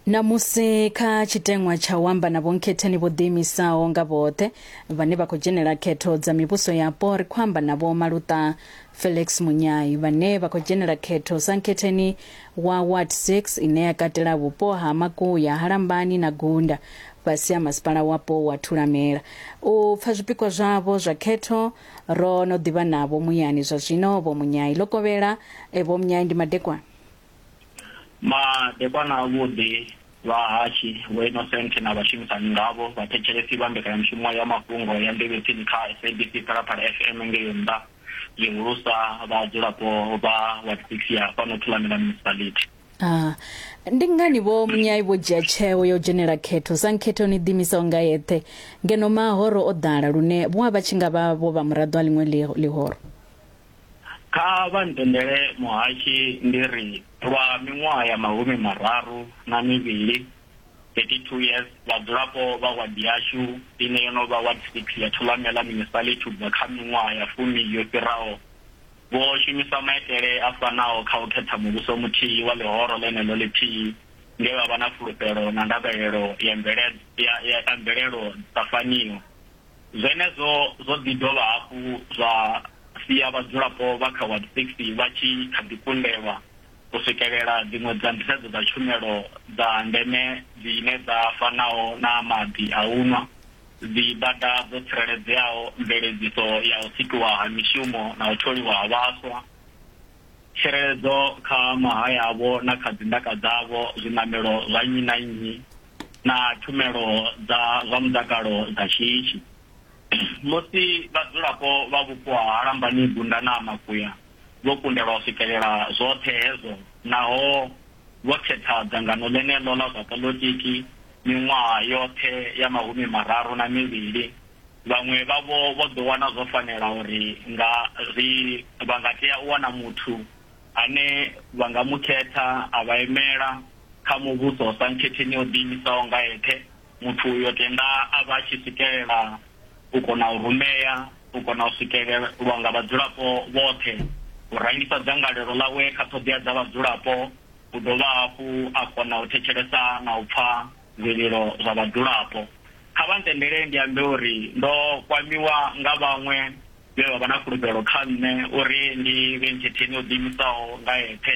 Namusi kha tshiteṅwa tsha u amba na vhonkhetheni vho ḓiimisaho nga vhoṱhe vhane vha khou dzhenela khetho dza mivhuso yapo, ri khou amba na Vho Maluṱa Felix Munyai vhane vha khou dzhenela khetho sa nkhetheni wa Ward 6 ine ya katela vhupo ha Makuya, ha Lambani na Gunda fhasi ha masipala wapo wa Thulamela. U pfa zwipikwa zwavho zwa khetho ro no ḓivha navho muyani zwa zwino Vho Munyai. Ḽo kovhela, Vho Munyai ndi madekwana. Madekwana avhuḓi, vhahashu, vhoinosenthe na vhashumisani ngavho, vhathetshelesi vha mbekanyamushumo ya mafhungo ya Mbiluni-Tsini kha SABC Phalaphala FM ngei nnḓa, zwihulusa vhadzulapo vha Ward 6 ya fhano Thulamela Municipality. Aa. Ndi ngani Vho Munyai vho dzhia tsheo ya u dzhenela khetho? Sankhetho ni ḓiimisaho nga yeṱhe ngeno mahoro o ḓala lune vho a vha tshi nga vha vho vha muraḓo a ḽiṅwe ḽihoro. Kha vha ntendele muhashe ndi ri lwa miṅwaha ya mahumi mararu na mivhili, 32 years, vhadzulapo vha wadi yashu ine yo no vha Ward 6 ya Thulamela Municipality u bva kha miṅwaha ya fumi yo fhiraho vho shumisa maitele a fanaho kha u khetha muvhuso muthihi wa ḽihoro ḽeneḽo ḽithihi nge vha vha na fulufhelo na ndavhelelo ya mvelelo dza faniho. Zwenezwo zwo ḓi dovha hafhu zwa sia vhadzulapo vha kha Ward 60 vha tshi kha ḓi kundelwa u swikelela dziṅwe dza nḓisedzo dza tshumelo dza ndeme dzine dza fanaho na maḓi a u nwa, dzibada dzo tsireledzeaho, mveledziso ya u sikiwa ha mishumo na u tholiwa ha vhaswa, tsireledzo kha mahaya avho na kha dzindaka dzavho, zwiṋamelo zwa nnyi na nnyi, na tshumelo dza zwa mutakalo dza shishi. Musi vhadzulapo vha vhupo ha Lambani Gunda na Makuya vho kundelwa u swikelela zwoṱhe hezwo naho vho khetha dzangano ḽeneḽo ḽa zwa poḽotiki miṅwaha yoṱhe ya mahumi mararu na mivhili, vhaṅwe vhavho vho ḓo wana zwo fanela uri nga ri vha nga tea u wana muthu ane vha nga mu khetha a vha imela kha muvhuso sa nkhetheni o ḓiimisaho nga eṱhe, muthu uyo tenda a vha a tshi swikelela u kona u rumea, u kona u swikelelwa nga vhadzulapo vhoṱhe, u rangisa dzangalelo ḽawe kha ṱhoḓea dza vhadzulapo, u dovha hafhu a kona u thetshelesa na u pfa zwililo zwa vhadzulapo. Kha vha ntendele ndi ambe uri ndo kwamiwa nga vhaṅwe vhe vha vha na fulufhelo kha nṋe uri ndi vhe nkhetheni o ḓiimisaho nga eṱhe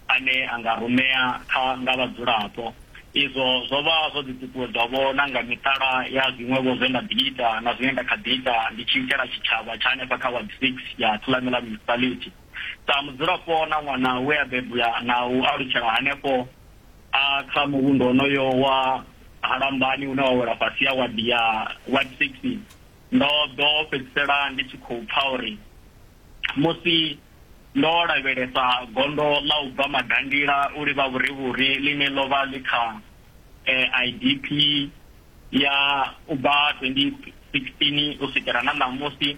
ane a nga rumea kha nga vhadzulapo. Izwo zwo vha zwo ḓi ṱuṱuwedzwa-vho na nga miṱala ya zwiṅwe-vho zwe nda ḓi ita na zwine nda kha ḓi ita ndi tshi itela tshitshavha tsha hanefha kha Ward 6 ya Thulamela Municipality. Sa mudzulapo na ṅwana we a bebwa na u alutshela hanefho, a kha muvhundu wonoyo wa ha Lambani une wa wela fhasi ha wadi ya Ward 6, Ndo ḓo fhedzisela ndi tshi khou pfa uri musi ndo lavhelesa gondo ḽa u bva Madangila u livha vhurivhuri ḽine ḽo vha ḽi kha IDP ya u bva 2016 u swikela na ṋamusi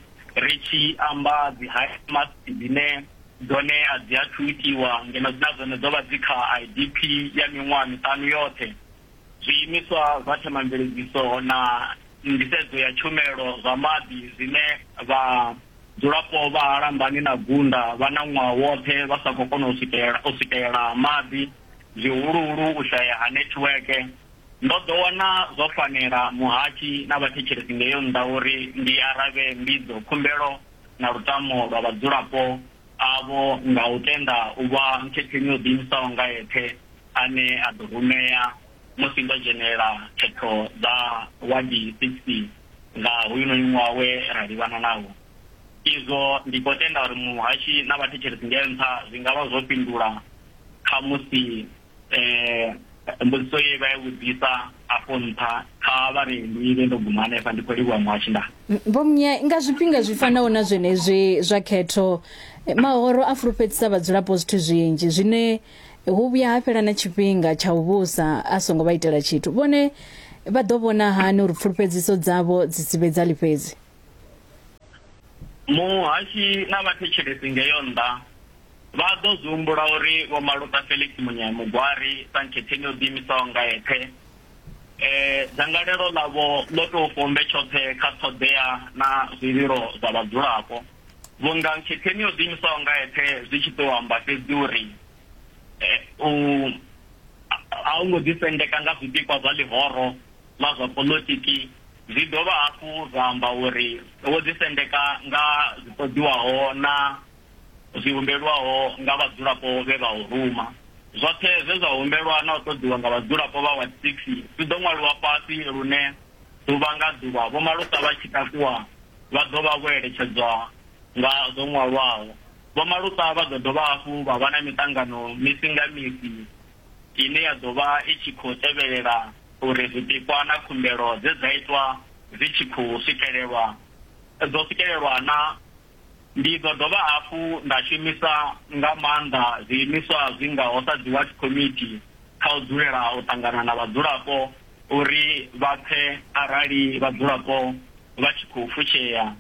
ri tshi amba dzi high mass dzine dzone a dzi athu itiwa ngeno dzi na dzone dzo vha dzi kha IDP ya miṅwaha miṱanu yoṱhe. zwiimiswa zwa themamveledziso na nḓisedzo ya tshumelo zwa maḓi zwine vhadzulapo vha ha Lambani na Gunda vha na ṅwaha woṱhe vha sa khou kona u swikelela maḓi, zwihuluhulu u shaya ha nethiweke. Ndo ḓo wana zwo fanela muhatshi na vhathetshelesi ngeo nnḓa uri ndi aravhe mbidzo, khumbelo na lutamo lwa vhadzulapo avho nga u tenda u vha nkhetheni yo ḓiimisaho nga eṱhe ane a ḓo rumea musi ndo dzhenela phetho dza Wadi Sixty nga hoyunoni ṅwaha we ra livhana nawo izwo. Ndi khou tenda uri muhashi na vhathetshelesi nge nṱha zwi nga vha zwo fhindula khamusi mbudziso ye vha i vhudzisa afho nṱha. Kha vha ri ndi ime ndo guma hanefha. Ndi khou livhuwa muhashi. Ndaa. Vho Munya, Nga zwifhinga zwi fanaho na zwenezwi zwa khetho, mahoro a fulufhedzisa vhadzulapo zwithu zwinzhi zwine. Hu vhuya ha fhela na tshifhinga tsha u vhusa a songo vha itela tshithu. Vhone vha ḓo vhona hani uri pfulufhedziso dzavho dzi si vhe dza ḽifhedzi? Muhashi na vhathetshelesi ngeo nnḓa vha ḓo zwi humbula uri Vho Maluta Felix Munyai Mugwari sa nkhetheṋi o ḓiimisaho nga eṱhe, dzangalelo ḽavho ḽo tou fombe tshoṱhe kha ṱhoḓea na zwililo zwa vhadzulapo. Vhunga nkhetheni yo ḓiimisaho nga eṱhe zwi tshi tou amba fhedzi uri u a u ngo ḓisendeka nga zwipikwa zwa ḽihoro ḽa zwa poḽotiki, zwi dovha hafhu zwa amba uri wo ḓisendeka nga zwi ṱoḓiwaho na zwi humbelwaho nga vhadzulapo vhe vha u ruma. Zwoṱhe zwe zwa humbelwa na u ṱoḓiwa nga vhadzulapo vha Ward Six zwi ḓo ṅwaliwa fhasi lune ḓuvha nga ḓuvha Vho Malusa vha tshi takuwa vha ḓo vha vho eletshedzwa nga zwo ṅwalwaho. Vhomaluṱa vha ḓo dovha hafhu vha vha na miṱangano misi nga misi ine ya ḓo vha i tshi khou tevhelela uri zwipikwa na khumbelo dze dza itwa dzi tshi khou swikelelwa dzo swikelelwa naa. Ndi ḓo dovha hafhu nda shumisa nga maanḓa zwiimiswa zwi ngaho sa dzi Ward Committee kha u dzulela u ṱangana na vhadzulapo uri vha pfe arali vhadzulapo vha tshi khou fushea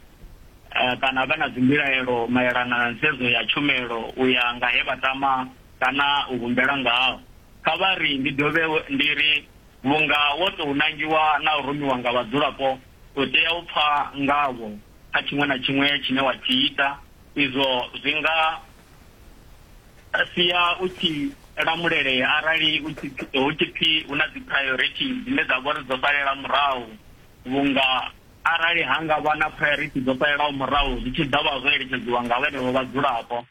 kana vha na dzimbilaelo maelana na nḓisedzo ya tshumelo u ya nga he vha tama kana u humbela ngaho. Kha vha ri ndi dovhe ndi ri, Vhunga wo tou nangiwa na u rumiwa nga vhadzulapo, u tea u pfa ngavho kha tshiṅwe na tshiṅwe tshine wa tshi ita. Izwo zwi nga sia u tshi lamulelea arali hu tshi pfi hu na dzi priority dzine dza vha uri dzo salela murahu vhunga arali ha nga vha na priority dzo salelaho murahu zwi tshi ḓa vha zwo eletshedziwa nga vhenevho vhadzulapo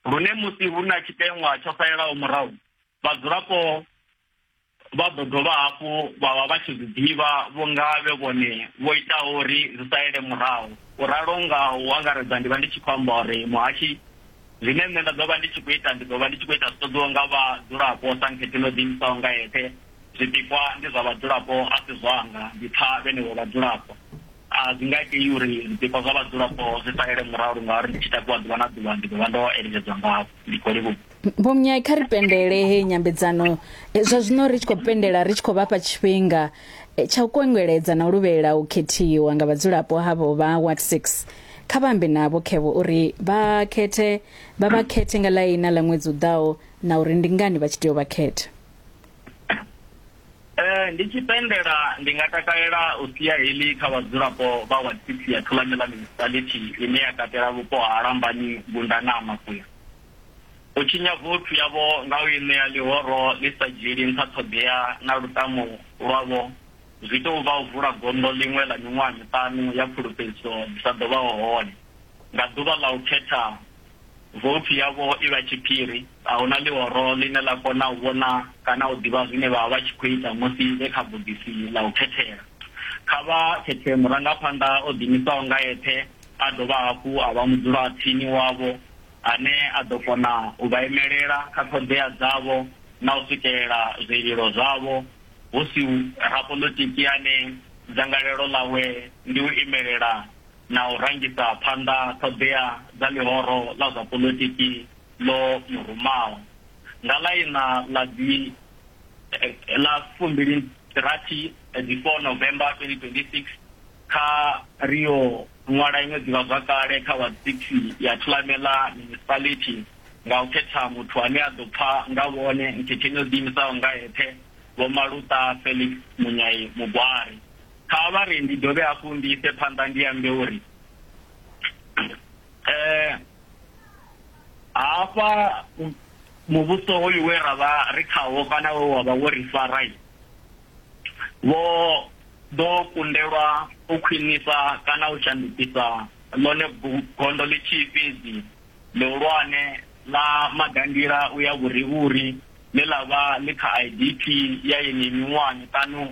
lune musi hu na tshiteṅwa tsho salelaho murahu vhadzulapo vha ḓo dovha hafhu vha vha vha tshi zwi ḓivha vhunga vhe vhone vho itaho uri zwi salele murahu. U ralo nga u angaredza ndi vha ndi tshi khou amba uri muhashi, zwine nṋe nda ḓo vha ndi tshi khou ita ndi ḓo vha ndi tshi khou ita zwi ṱoḓiwaho nga vhadzulapo sa nkhethi no ḓiimisaho nga yeṱhe. Zwipikwa ndi zwa vhadzulapo a si zwanga, ndi pfa vhenevho vhadzulapo. A zwi nga itei uri zwipikwa zwa vhadzulapo zwi salele murahu ngauri ndi tshi takuwa ḓuvha na ḓuvha ndi ḓo vha ndo eleledzwa ngavho. Vho Mnyai kha ri pendele he nyambedzano eh, zwa zwino ri tshi khou pendela ri tshi khou vhafha tshifhinga eh, tsha u kwengeledza na u luvhelela u khethiwa nga vhadzulapo havho vha Ward 6 kha vhambe navho khevo uri vha khethe vha vha khethe nga ḽaina ḽa ṅwedzi u ḓaho na uri ndi ngani vha tshi tea u vha khetha. Eh ndi tshi pendela ndi nga takalela u sia heḽi kha vhadzulapo vha wa tsitsi ya Thulamela municipality ine ya katela vhupo ha Lambani, Gunda na Makuya. U tshinya vothu yavho nga u i ṋea ḽihoro ḽi sa dzhieli nṱha ṱhoḓea na lutamo lwavho zwi tou vha u vula gondo ḽiṅwe ḽa miṅwaha miṱanu ya pfulufhedziso dzi sa ḓo vhaho hone nga ḓuvha ḽa u khetha Vhopfi yavho i vha tshiphiri. A hu na ḽihoro ḽine ḽa kona u vhona kana u ḓivha zwine vha vha vha tshi khou ita musi vhe kha bogisi ḽa u khethela. Kha vha khethe murangaphanḓa o ḓiimisaho nga eṱhe a dovha hafhu a vha mudzulatsini wavho ane a ḓo kona u vha imelela kha ṱhoḓea dzavho na u swikelela zwililo zwavho hu si rapoḽotiki ane dzangalelo ḽawe ndi u imelela na u rangisa phanḓa ṱhoḓea dza ḽihoro ḽa zwa poḽotiki ḽo mu rumaho. Nga ḽa iṋa ḽa dzi ḽa fumbilirathi dzi 4 November 2026 kha. Ri yo ṅwala iṅwe ḓivhazwakale kha WhatsApp ya Thulamela Municipality nga u khetha muthu ane a ḓo pfa nga vhone nkhetheni yo ḓiimisaho nga eṱhe, Vho Maluta Felix Munyai Mugwari. kha vha ri ndi dovhe hafhu ndi ise phanḓa ndi ambe uri eh hafha muvhuso hoyu we ra vha ri khawo kana we wa vha wo ri fara vho ḓo kundelwa u khwinisa kana u shandukisa ḽone gondo ḽi tshi fhedzi ḽihulwane ḽa magandila u ya vhurivhuri ḽe ḽa vha ḽi kha idp ya yeneyi miṅwaha miṱanu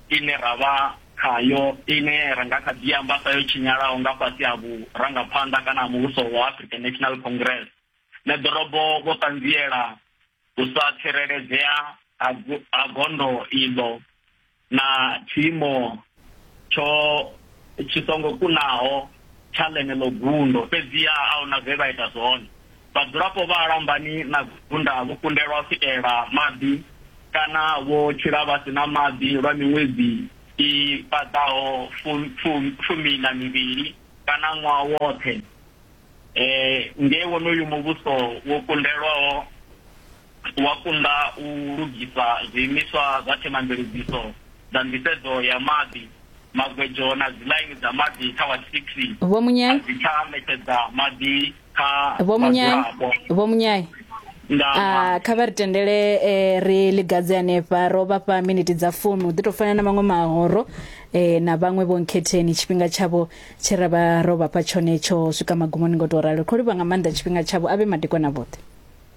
ine ra vha khayo, ine ra nga kha ḓi amba sa yo tshinyalaho nga fhasi ha vhurangaphanḓa kana ha muvhuso wa African National Congress, na ḓorobo vho ṱanziela u sa tsireledzea ha gondo iḽo na tshiimo tsho tshi songo kunaho. tsha ḽeneḽo gundo, fhedziha a huna zwe vha ita zwone. Vhadzulapo vha Lambani na Gunda vho kundelwa u swikelela maḓi kana vho tshila vha si na maḓi lwa miṅwedzi i paḓaho fumi na mivhili kana ṅwaha woṱhe nge wonoyu muvhuso wo kundelwaho. wa kunda u lugisa zwiimiswa zwa themamveledziso dza nḓisedzo ya maḓi, magwedzo na dziḽaini dza maḓi kha wa 6 a dzi tsha ṋetshedza maḓi kha vhadzulapo. Vho Munyayi, a kha vha ri tendele e, ri ligadze hanefha ro vha fha miniti dza fumi u ḓi tou fana na maṅwe mahoro e, na vhaṅwe vho nkhetheni tshifhinga tshavho tshe ra vha ro vha fha tshone tsho swika magumoni ngo tou ralo ri khou livha nga maanḓa tshifhinga tshavho a vhe madekwana vhoṱhe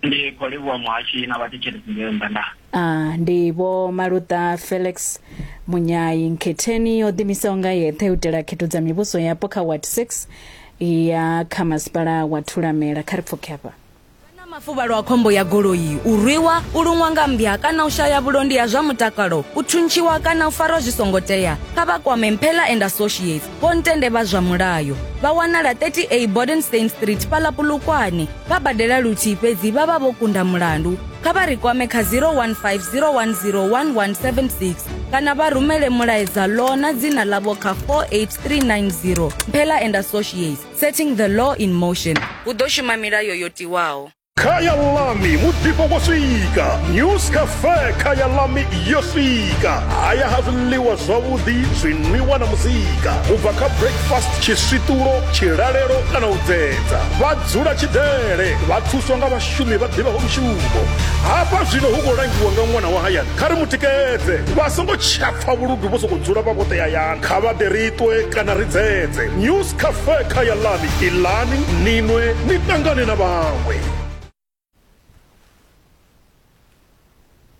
Ndi khou livhuwa muhashi na vhathetshelesi ngeo nndandani. A ndi Vho Maluṱa Felix Munyayi. Nkhetheni yo ḓimisaho nga yeṱhe u itela khetho dza mivhuso yapo kha Ward 6 ya kha masipala wa Thulamela. Kha ri pfuke hafha. Vha na mafuvhalo a khombo ya goloi, u rwiwa, u luṅwa nga mmbya kana u shaya vhulondi ha zwa mutakalo, u thuntshiwa kana u farwa zwi songo tea, kha vha kwame Mphela and Associates. Vhontende vha zwa mulayo vha wanala 30A Bodenstein Street fhaḽa Polokwane. Vha badela luthihi fhedzi vha vha vho kunda mulandu. Kha vha ri kwame kha 015 010 1176 kana vha rumele mulaedza law na dzina ḽavho kha 48390. Mphela and Associates, setting the law in motion. Hu ḓo shuma milayo yo tiwaho. khayalami muḓifho wo swika news cafe khayalami yo swika haya ha zwiḽiwa zwavhuḓi zwinwiwa na muzika u bva kha breakfast tshiswiṱulo tshilalelo kana u dzedza vha dzula tshidele vha thuswa nga vhashumi vha ḓivhaho mushumo hafha zwino hu khou langiwa nga ṅwana wa hayani kha ri mu tikedze vha songo tshapfa vhuludu vho sokou dzula vha vhoṱe hayani kha vha ḓe ri ṱwe kana ri dzedze news kafe khaya lami ilani ninwe ni tangane na vhaṅwe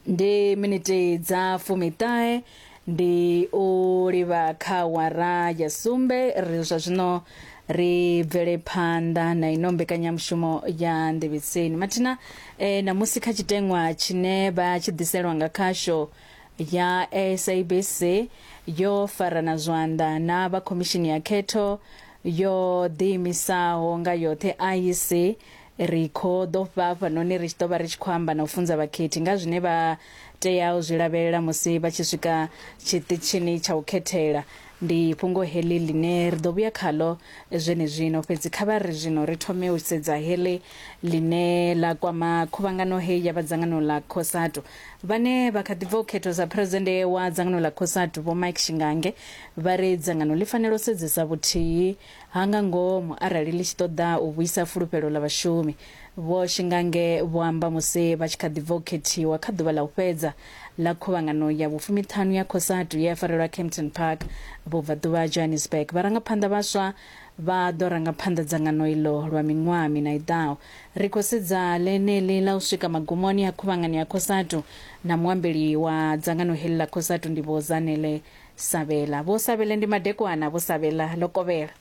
ndi miniti dza fumiṱahe ndi u livha kha wara ya sumbe ri zwa zwino ri bvele phanḓa na ino mbekanyamushumo ya nḓevhetseni mathina eh, namusi kha tshiteṅwa tshine vha tshi ḓiselwa nga khasho ya SABC yo farana zwanḓa na vha khomishini ya khetho yo ḓiimisaho nga yoṱhe IEC ri khou ḓo fha hafhanoni ri tshi ḓo vha ri tshi khou amba na u funza vhakhethi nga zwine vha tea u zwi lavhelela musi vha tshi swika tshiṱitshini tsha u khethela ndi fhungo heḽi ḽine ri ḓo vhuya khaḽo zwenezwino fhedzi kha vha ri zwino ri thome u sedza heḽi ḽine ḽa kwama khuvhangano heyi ya vhadzangano ḽa cosatu Vhane vha kha ḓi bva u khethwa sa Phresidennde wa dzangano ḽa Cosatu, Vho Mike Shingange, vha ri dzangano ḽi fanela u sedzesa vhuthihi ha nga ngomu arali ḽi tshi ṱoḓa u vhuisa fulufhelo ḽa vhashumi. Vho Shingange vho amba musi vha tshi kha ḓi bva u khethiwa kha ḓuvha ḽa u fhedza ḽa khuvhangano ya vhufumiṱhanu ya Cosatu ye ya farelwa Kempton Park, Vhubvaḓuvha ha Johannesburg. Vharangaphanḓa vhaswa Vha ḓo ranga phanḓa dzangano iḽo lwa miṅwaha miṋa i ḓaho. Ri khou sedza ḽeneḽi ḽa u swika magumoni a khuvhangano ya Cosatu, na muambeli wa dzangano heḽi ḽa Cosatu ndi Vho Zanele Sabela. Vho Sabela ndi madekwana, Vho Sabela, ḽo kovhela.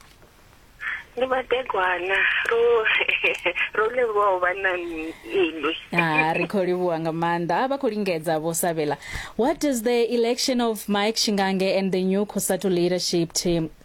Ndi madekwana, ro ro livhuwa u vha na inwi. Ha, ri khou livhuwa nga maanḓa. Ha, vha khou lingedza, Vho Sabela. What does the election of Mike Shingange and the new Cosatu leadership team